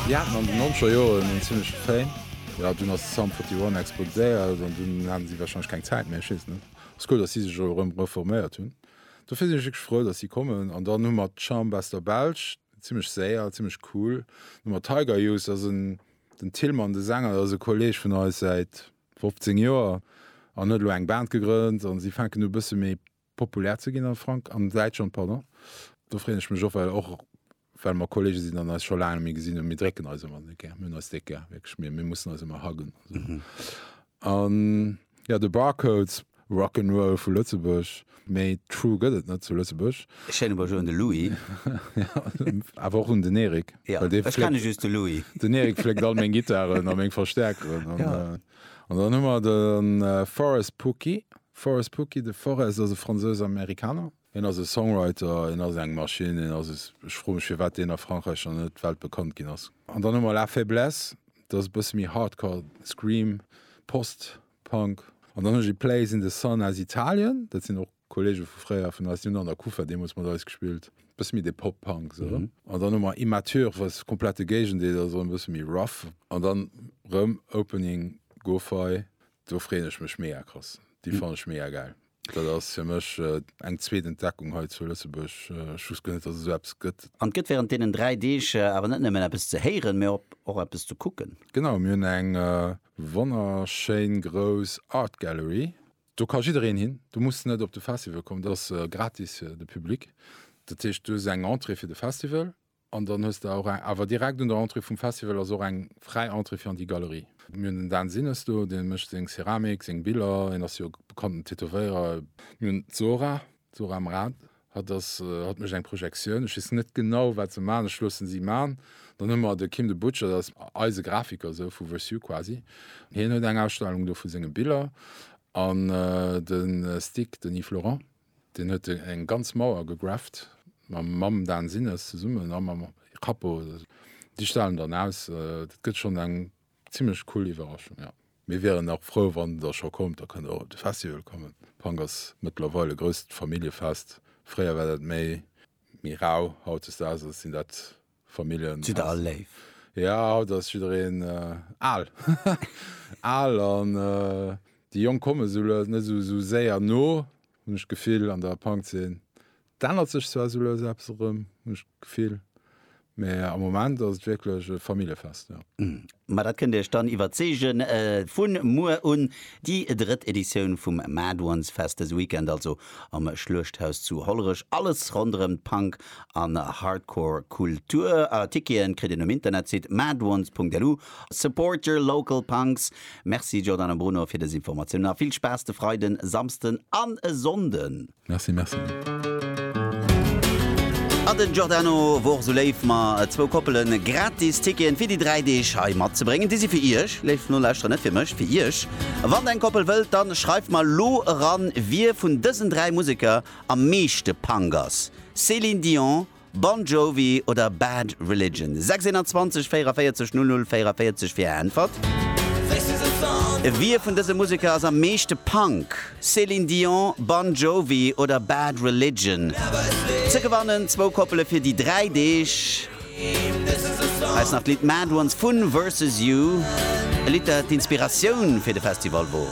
Déi haten an den nonzeger Joren en zimmleche Fame. Jo, dunn ass Sum 41 explodéiert an dunn haten si wahrscheinlech keng Zäit méi, ech weess et net. Ass cool, datt si sech elo erëm reforméiert hunn. Dofir sinn ech wierklech frou, datt si kommen. An dann hu mer d'Chumb aus der Belsch, zimmlech séier, zimmlech cool. Dann hu mer Tiger Youth, dat ass en, den Tillmann, de Sänger, dat ass e Kolleeg vun eis säit 15 Joer an huet elo eng Band gegrënnt an si fänken u e bësse méi populär ze ginn a Frank an Däitschland, pardon. Do freeën ech mech och, well och well mer Kollege sinn an eis scho laang net méi gesinn hunn. Mir drécken eis ëmmer déck gär. Mir hunn eis déck gär, wierklech. Mir, mir mussen eis ëmmer huggen a sou. An jo, de Barcodes, Rock 'n' Roll vu Lëtzebuerg. Méi true gëtt et net zu Lëtzebuerg. E schéine Bonjour un de Louis. Awer och un den Eric. Jo, ech kenne just de Louis. Den Eric fléckt all meng Gittaren a meng Verstäerkeren an. An dann hu mer de Forest Pookie. Forest Pookie, de Forest ass e Fransouse-Amerikaner. Hien ass e Songwriter, hien ass eng Maschinn, hien ass e, ech froe mech, firwat deen a Frankräich nach net weltbekannt ginn ass. An dann hu mer La Faiblesse, dat ass e bësse méi Hardcore, Scream, Post-Punk. An dann hu ech Place in the Sun aus Italien, dat sinn och Kollege vu fréier vun eis, déi hunn an der Kufer deemools mat eis gespillt, e bësse méi de Pop-Punk esou. An dann hu mer Immature, wat de komplette Géigendeel ass, erëm e bësse méi rough. An dann rëm Opening Gofei, do freeën ech mech mega krass, déi fannen ech mega gäil. Dat ass fir mech eng zweet Entdeckung hei zu Lëtzebuerg. Ech wousst guer net, datt et esou eppes gëtt. An et gëtt wärend deenen dräi Deeg awer net nëmmen eppes ze héieren, mee och eppes ze kucken. Genau, mir hunn eng wonnerschéin grouss Art Gallery. Do ka jiddereen hin, du muss net op de Festival kommen, dat ass gratis fir de Public. Dat heescht, du hues eng Entrée fir de Festival an dann hues de och eng, awer direkt un der Entrée vum Festival ass och eng fräi Entrée fir an déi Galerie. Mir hunn den Dan Sinnes do, dee mécht seng Ceramik, seng Biller, hien ass jo bekannten Tätowéierer. Mir hunn d'Zora, D'Zora Mraz, Hatt ass, hatt mécht eng Projektioun, ech weess net genau wat se man, ech loossen si man. Dann hu mer de Kim de Butcher, dat ass eise Grafiker sou vu Vesuv quasi, hien huet eng Ausstellung do vu senge Biller. An de Stig, den Yves Laurent, deen huet eng ganz Mauer gegrafft mam Dan Sinnes zesummen a mam Cappo, déi stellen dann aus. Dat gëtt schonn eng Zimlech cool Iwwerraschung ja. Mir wieren nach frou wann der scho kommt, da kënnt der och op de Festival kommen. Punk ass mëttlerweil e grousst Familljefest. Fréier war dat méi méi rau, hautdesdaags ass sinn dat Familljen. Jidder all léif. Ja haut ass jiddereen al al an déi Jonk kommen esou lues net esou séier no hunn ech d'Gefill an der Punkzeen. Et ännert sech zwar sou lues eppes erëm, hunn ech d'Gefill, mä am Moment ass et wierklech e Familljefest, jo. Ma dat kënnt Iech dann iwwerzeegen. Vu muer un déi drëtt Editioun vum Mad'Ones-Fest, dëse Weekend also am Schluechthaus zu Hollerech. Alles ronderëm d'Punk an Hardcore-Kultur. Ticketen kritt een um Internetsite mad'ones.lu. Support your local punks! Merci Jordan a Bruno fir dës Informatiounen a vill Spaass de Freiden, Samsden an e Sonnden! Merci, merci. A den Giordano wor esou léif mer zwou Koppelen gratis Ticketen fir déi 3 Deeg hei matzebréngen. Déi si fir iech, léif Nolauschterer, net fir mech, fir iech. Wann eng Koppel wëllt, dann schreift mer elo eran, wie vun dësen 3 Museker am meeschte Punk ass, Céline Dion, Bon Jovi oder Bad Religion? 621 44 00 44 fir är Äntwert. Wie vun dëse Museker ass am meeschte Punk? Céline Dion, Bon Jovi oder Bad Religion? Ze gewannen zwou Koppele fir déi dräi Deeg. Hei ass nach d'Lidd Mad Ones vun Versus You, e Lidd dat d'Inspiratioun fir de Festival wor.